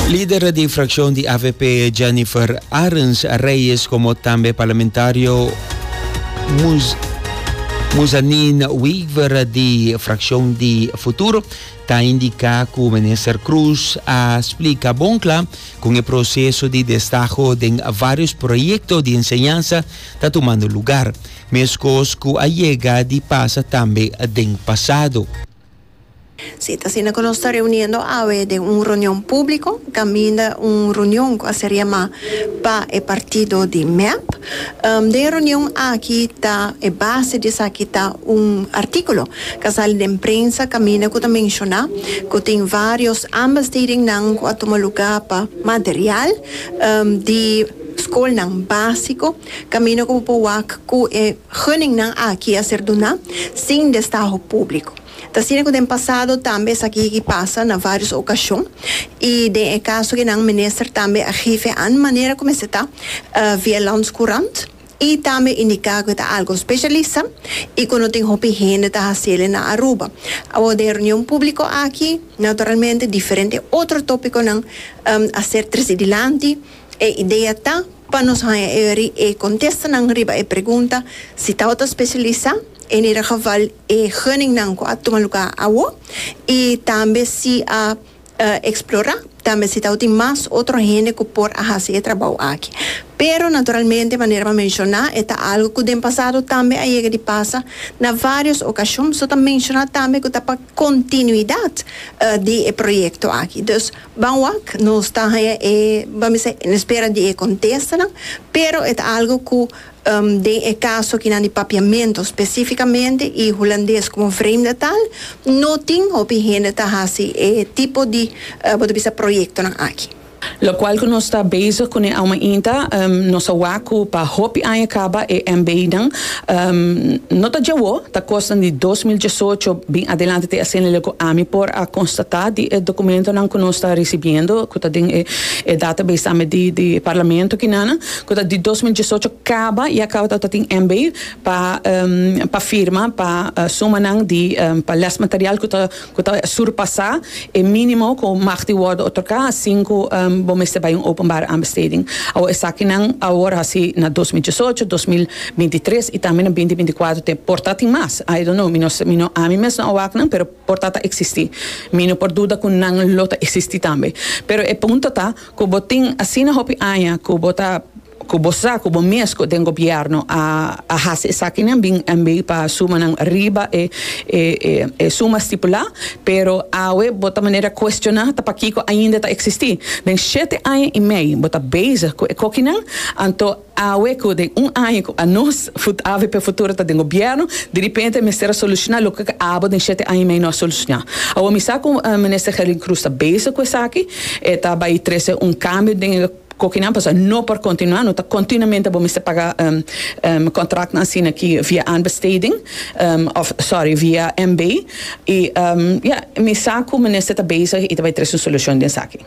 Lider di fraccion di avp Jennifer Arens Reyes como tambe parlamentario Mus Muzanin Weaver di fraccion di Futuro ta indica cu minister Cruz a splica bon cla con e proceso di destaho den varios proyecto di enseñansa ta tumando lugar, mescos cu a yega di pasa tambe den pasado. Si ta asina cu nos ta reuniendo awe den un reunion publico caminda un reunion cu a ser yama pa e partido di mep. Den e reunion aki ta e base di esaki ta un articulo cu a sali den prensa caminda cu ta menciona cu tin varios aanbestedingnan cu a tuma lugar pa material di scolnan basico caminda cu bo por wak cu e Guningnan aki a ser duná sin destaho públiko. Ta asina ku den pasado tambe esaki yegi pasa na vários okashon i den e kasokinan minister tambe a gife an manera ku mester ta via Landscourant i tambe indiká ku e ta algu spesialisá i ku no tin hopi hende ta hasi el na Aruba. Awor den reunion públiko aki naturalmente diferente otro tópikonan a ser trese dilanti. E idea ta pa nos haña e ri e contestanan riba e pregunta si tabata specialisa en e geval e henningnan cu a tuma lugar awo y tambe si a explora tambe si tau tin mas otro hende cu por a haci e trabao aki. Pero naturalmente manera m'a menciona e ta algo cu den pasado tambe a yega di pasa na varios ocasion so ta menciona tambe cu ta pa continuidad di e proyecto aki. Ban wak nos ta haña e ban bisa e no spera di e contestanan, pero e ta algo cu den e caso kinan di papiamento specificamente y Hulandes como vreemde taal no tin hopi hende ta haci e tipo di bo ta bisa proyectonan aki. Locual cu nos ta bezig cu ne auma inta nos a wak cu pa hopi aña caba e MBInan No ta djawo, ta kosnan di dos mil diesocho bin adelante te hacen lele cu ami por a constata di e documentonan cu nos ta ricibiendo, cu ta den e database tambe di di Parlamento aki nan, cu ta di dos mil diesocho caba y a caba ta tin hember pa pa firma pa sumanan di pa lesmaterial cu ta ku ta surpasá e mínimo ku mag di wòrdu otorgá asin ku bo mester bai un openbare aanbesteding. Awor esakinan awor hasi na dos mil diesocho, dos mil binti tres i tambe na binti binti kuatro te por ta tin mas. I don't know, mi no mi no ami mes no a wak nan pero por ta ta eksistí. Mi no por duda ku nan lo ta eksistí tambe. Pero e punto ta ku bo tin asina hopi aña ku bo ta. Cu bo sa cu bo mezco den gobierno a a haci esakinan bin NB pa sumanan riba e e e e suma stipula, pero awe bo ta manera cuestiona ta pakico ainda ta existi. Den shete aña y mei bo ta bezig cu e cokinan, anto awe cu den un aña cu a nos fut avp futuro ta den gobierno, diripente mester a soluciona loke cu abo den shete aña y mei no a soluciona. Awor mi sa cu Minister Herlin Croes ta bezig cu esaki, e ta bay trece un cambio den e. Cu aki nan pasa? No por continua, no ta continuamente bo mester paga contractnan asina aki via aanbesteding of sorry via MB y ya mi sa cu minister ta bezig y ta bay tres un solucion den esaki.